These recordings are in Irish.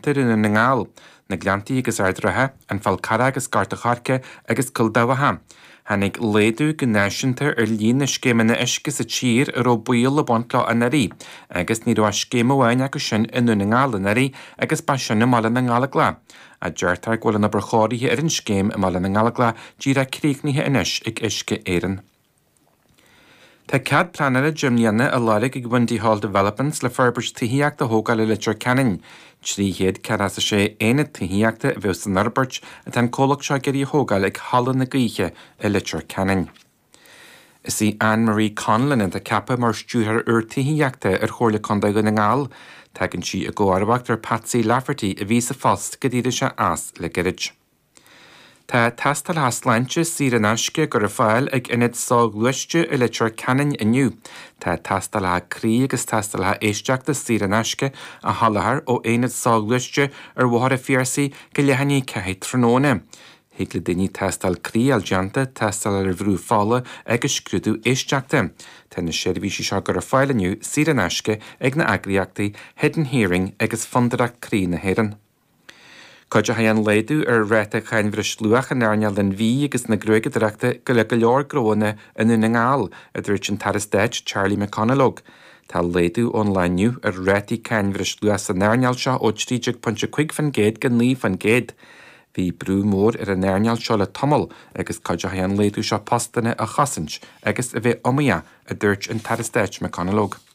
Dhún na nGall, Na Gleanntaí agus Ard Ratha, An Fál Carrach agus Gort a' Choirce agus Cúil Dabhcha. Tháinig laghdú go náisiúnta ar líon na scéimeanna uisce sa tír a raibh baol le baint leo anuraidh agus ní raibh ach scéim amháin acu sin i nDún na nGall anuraidh agus ba sin i mBaile na nGallaghlach. Deirtear go bhfuil an obair chóirithe ar an scéim i mBaile na nGallaghlach díreach críochnaithe anois ag Uisce Éireann. Tá cead pleanála 10 mbliana á lorg ag Windy Hall Developments le forbairt tithíochta a thógáil i Leitir Ceanainn. 300 céad is a 6 aonad tithíochta a bheidh san fhorbairt atá an comhlacht seo ag iarraidh a thógáil ag Halla na Gaoithe i Leitir Ceanainn. Is í Anne Marie Connellan atá ceaptha mar Stiúrthóir úr Tithíochta ar Chomhairle Contae Dhún na nGall. Tagann sí i gcomharbacht ar Patsy Lafferty a bhí sa phost go d'éirigh sé as le gairid. Tá tástálacha sláinte saor in aisce dhá gcur ar fáil ag Ionad Soghluaiste i Leitir Ceanainn inniu. Tá tástálacha croí agus tástálacha éisteachta saor in aisce á sholáthar ó Aonad Soghluaiste ar Bhóthar a Phiarsaigh go leath i ndiaidh a ceathair tráthnóna. Thig le daoine tástáil croí a fháil déanta, tástáil ar bhrú fola agus scrúdú éisteachta. Tá na seirbhísí seo dhá gcur ar fáil inniu saor in aisce ag na eagraíochtaí Hidden Hearing agus Fondúireacht Croí na hÉireann. Cuideochaidh an laghdú ar ráta cáin bhreisluacha in earnáil an bhídh agus na gruaigeadóireachta go le go leor gnónna i nDún na nGall, a dúirt an tAire Stáit Charlie McConalogue. Tá laghdú ón lá inniu ar rátaí cáin bhreisluacha san earnáil seo ó 13.5% go 9%. Bhí brú mór ar an earnáil seo le tamall agus cuideochaidh an laghdú seo postanna a chosaint agus a bheith iomaíoch, a dúirt an tAire Stáit McConalogue.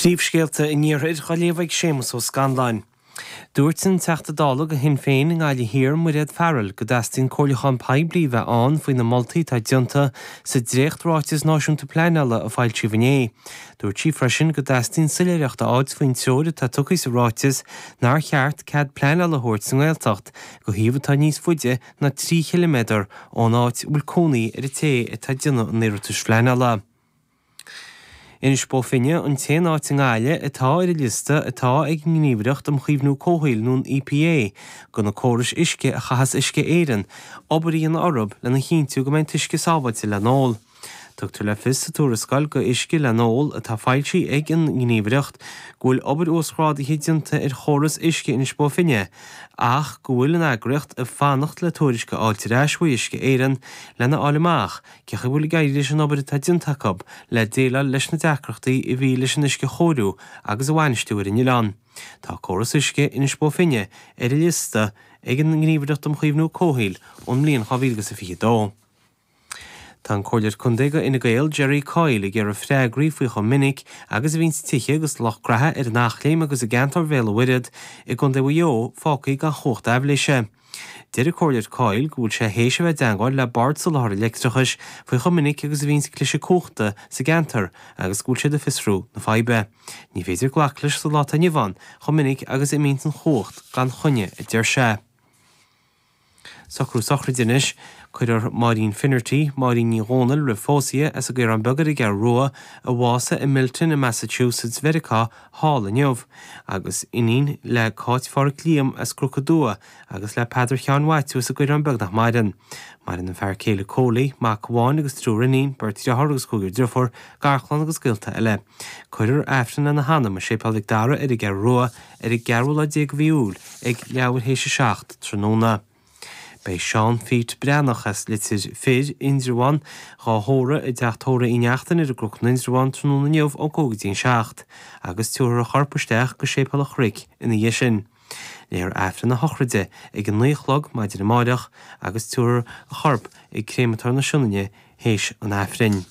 Príomhscéalta an Iarthair dhá léamh ag Séamus Ó Scanláin. Dúirt an Teachta Dála go Shinn Féin i nGaillimh Thiar, Mairéad Farrell, go dteastaíonn comhairliúchán poiblí bheith ann faoi na moltaí atá déanta sa dréacht-Ráiteas Náisiúnta Pleanála a foilsíodh inné. Dúirt sí freisin go dteastaíonn soiléireacht a fháilt faoin treoir atá tugtha sa ráiteas nár cheart cead pleanála a thabhairt sa nGaeltacht go shuíomh atá níos faide ná trí chiliméadar ón áit a bhfuil cónaí ar an té atá ag déanamh an iarratais phleanála. Inis Bó Finne an t-aon áit i nGaillimh atá ar an liosta atá ag an nGníomhaireacht um Chaomhnú Comhshaoil nó an EPA go na córais uisce a chaitheas Uisce Éireann obair a dhéanamh orthu lena chinntiú go mbeidh an t-uisce sábháilte le n-ól. Tugtar le fios sa tuarascáil go Uisce le n-Ól atá foilsithe ag an nGníomhaireacht go bhfuil obair uasghrádaithe déanta ar chóras uisce Inis Bó Finne ach go bhfuil an eagraíocht ag fanacht le tuairisc a fháilt ar ais uaidh Uisce Éireann lena fháil amach Cén chaoi a bhfuil ag éirí leis an obair atá déanta acu le déileáil leis na deacrachtaí a bhí leis an uisce a chóiriú agus a bhainistiú ar an oileán? Tá Córas Uisce Inis Bó Finne ar an liosta ag an nGníomhaireacht um Chaomhnú Comhshaoil ón mbliain 2022. Tá an Comhairleoir Contae de Fhine Gael, Gerry Coyle ag iarraidh freagraí faoi chomh minic agus a bhíonn tithe agus lucht gnaithe ar an Eachléim agus i gceantar Bhéal an Mhuirthead i gContae Mhaigh Eo fágtha gan chumhacht aibhléise. Deir an Comhairleoir Coyle go bhfuil sé théis a bheith i dteangmháil le Bord Soláthair an Leictreachais faoi chomh minic agus a bhíonns cliseadh cumhachta sa gceantar agus go bhfuil siad ag fiosrú na faidhbe. Ní féidir glacadh leis sa lá atá inniu ann chomh minic agus a imíonn an chumhacht gan choinne, a deir sé. Socrú sochraide anois. Cuirfear Máirín Finnerty, Máirín Ní Dhomhnaill, roimh pósadh di as an gCaorán Beag ar an gCeathrú Rua, a bhásaigh i Milton i Massachusetts, Meiriceá, thall inniu, agus iníon le Cáit Phádhraic Liam as Cruc a Dua agus le Peadar Sheáin Mhaitiú as an gCaorán Beag nach maireann. Maireann a fear céile Cóilí, mac amháin agus triúr iníon, beirt dhriotháir agus cúigear driofúr, garchlann agus gaolta eile. Cuirfear Aifreann lena hanam i Séipéal Mhic Dara ar an gCeathrú Rua ar an gceathrú lá déag de mhí Iúil ag leathuair théis a seacht tráthnóna. Beidh Seán Phete Breathnach as Litir Fir, Indreabhán, dhá thórramh i dTeach Tórraimh Uí Neachtain ar an gCruc in Indreabhán tráthnóna inniu ón cúig go dtí an seacht agus tiúrfar a chorp isteach go Séipéal an Chnoic ina dhiaidh sin. Léifear Aifreann a shochraide ag a naoi a chlog maidin amáireach agus tiúrfar a chorp ag Créamatóir na Sionainne théis an Aifrinn.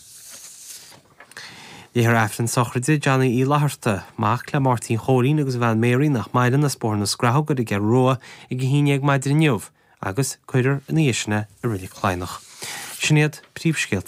Léifear Aifreann sochraide Johnny Uí Fhlaithearta, mac le Máirtín Chóilín agus a bhean Mary nach maireann, as Bóthar na Scrathóg ar an gCeathrú Rua ag a haon déag maidin inniu agus cuirfear ina dhiaidh sin é i Roilig Chladhnach. Sin iad príomhscéalta